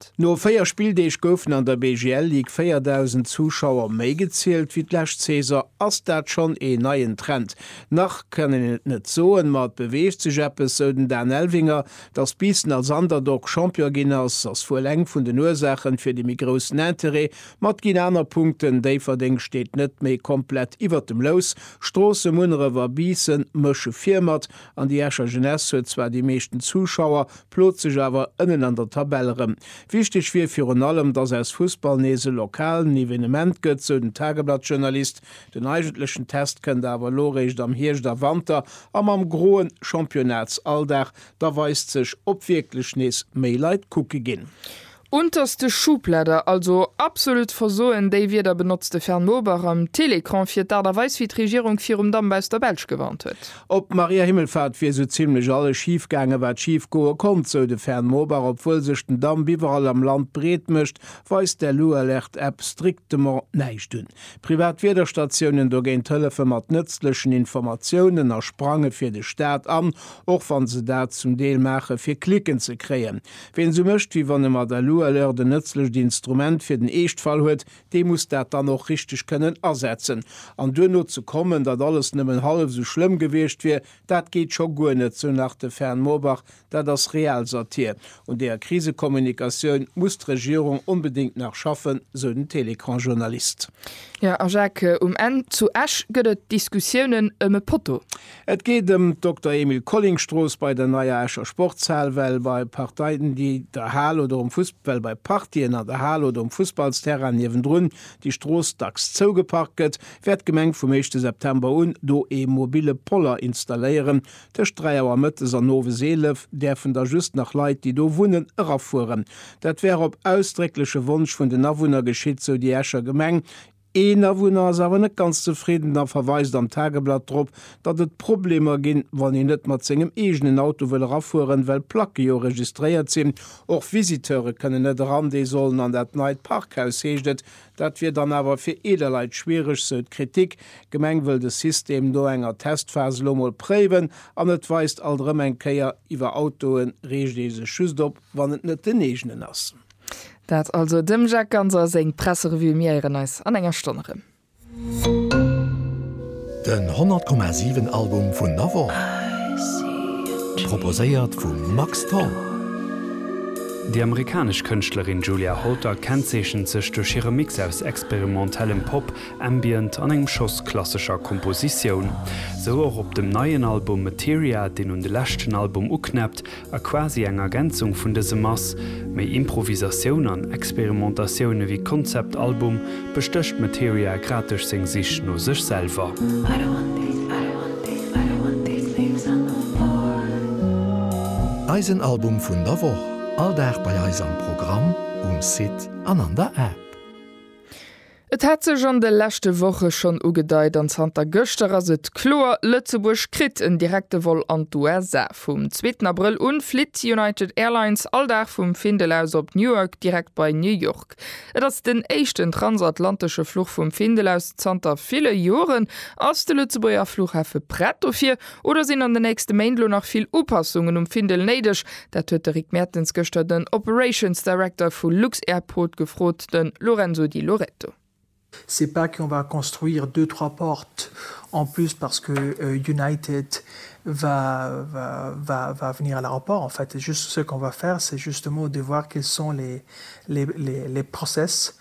Stad. No 4 Spilldeeg goufen an der BGL Ligue 4.000 Zuschauer méi gezielt wéi d'lescht Saison. Ass dat schonn een neien Trend? Nach kann een et net soen, ma et beweegt sech eppes, sou den Dan Elvinger. Datt Biissen als Underdog Champion ginn ass, ass wuel eng vun den Ursaachen fir de méi groussen Interêt, ma et ginn aner Punkten. Déifferdeng steet net méi komplett iwwer dem Lous. Stroosse, Munneref a Biissen mësche vir mat An déi Escher Jeunesse huet zwar déi meeschten Zuschauer, plot sech awer ënnen an der Tabell erëm. Wichteg wier virun allem, datt aus Fussball nees e lokalen Evenement gëtt, sou den Tageblatt-Journalist. Den eigentlechen Test kënnt awer elo eréischt am Hierscht a Wanter, a mam groen Championnats-Alldag, da weist sech, ob wierklech nees méi Leit kucke ginn. Unterste Schublader, also absolut versoen, déi Wierder benotzt de Fern Bober am Télécran fir d'Aart a Weis wéi d'Regierung virum Damp aus der Belsch gewarnt huet. Op Maria Himmelfahrt wier sou zimlech alles schif gaangen, wat schif goe konnt, sou de Fern Bober. Obwuel sech den Damp iwwerall am Land breet mécht, weist d'LU-Alerte-App strictement näischt un. Privat Wiederstatiounen dogéint hëllefe mat nëtzlechen Informatiounen a sprange fir de Staat an, och wann se dat zum Deel maache fir Klicken ze kréien. Ween esou mécht, wéi wann e mat der Loi Alert en nëtzlecht Instrument fir den Eeschtfall huet, dee muss dat dann och richteg kënnen asetzen. An duerno ze kommen, datt alles nëmmen hallef esou schlëmm gewiescht wier, dat geet scho guer net, sou nach de Fern Moorbach. Dat ass Realsatir. Un deeër Krisekommunikatioun muss d'Regierung onbedéngt nach schaffen, sou den Télécran-Journalist. Jo, a Jacques, um Enn zu Esch gëtt et Diskussiounen ëm e Potto. Et geet ëm d'Dokter Emil Colling Strooss bei der neier Escher Sportshal, well bei Parteien di der Hal oder um Fuss well bei Partien an der Hal oder um Fussballsterrain niewendrun déi Strooss dacks zougeparkt gëtt, wäert d'Gemeng vum éischte September un do ee mobille Poller installéieren. Tëscht 3 Auer mëttes an owes 11 däerfen da just nach Leit, déi do wunnen, erafueren. Dat wär op ausdréckleche Wonsch vun den Awunner geschitt, sou déi Escher Gemeng. Een Awunner ass awer net ganz zefridden a verweist am Tageblatt drop, datt et Problemer ginn, wann een net mat sengem eegenen Auto wëll erafueren, well d'Placke jo registréiert sinn. Och Visiteure kënnen net eran, déi sollen an dat neit Parkhaus, heescht et. Dat wier dann awer fir eeler Leit schwiereg, sou d'Kritik. D'Gemeng wëll de System no enger Testphas elo mol préiwen. An et weist alt erëm eng Kéier, Iwwer Autoe reegt ee sech just op, wann et net den eegenen ass. Dat also dem Jacques Ganser seng Presserevue. Mir héieren eis an enger Stonn erëm. Den 100,7 Album vun der Woch, proposéiert vum Max Tholl. Déi amerikanesch Kënschtlerin Julia Holter kennzeechent sech duerch hire Mix aus experimentellem Pop, Ambient an engem Schoss klassescher Kompositioun. Sou och op dem neien Album Materia, deen un de leschten Album uknäppt, A quasi eng Ergänzung vun dësem ass méi Improvisatioun an Experimentatioun ewéi Konzeptalbum, bestécht Materia grad duerch seng Sich no sech selwer. Eisen Album vun der Woch, all Dag bei eis am Programm, um Site an an der App. Et hat sech an de leschte Woche schonn ugedeit an zanter gëschter ass et kloer, Lëtzebuerg kritt en direkte Vol an d'USA. Vum zweeten Abrëll un flitt United Airlines all Dag vum Findel aus op Newark direkt bei New York. Et ass den éischten transatlantesche Fluch vum Findel aus zanter ville Joren. Ass de Lëtzebuerger Fluchhafe prett dofir? Oder sinn an den nächste Méint elo nach vill Upassungen um Findel néideg? Dat huet de Rick Mertens gëschter den Operations Director vu Luxairport gefrot, de Lorenzo Di Loreto. C'est pas qu'on va construire deux trois portes en plus parce que United va va va va venir à l'aéroport. En fait, juste ce qu'on va faire, c'est justement de voir quels sont les les les les processes.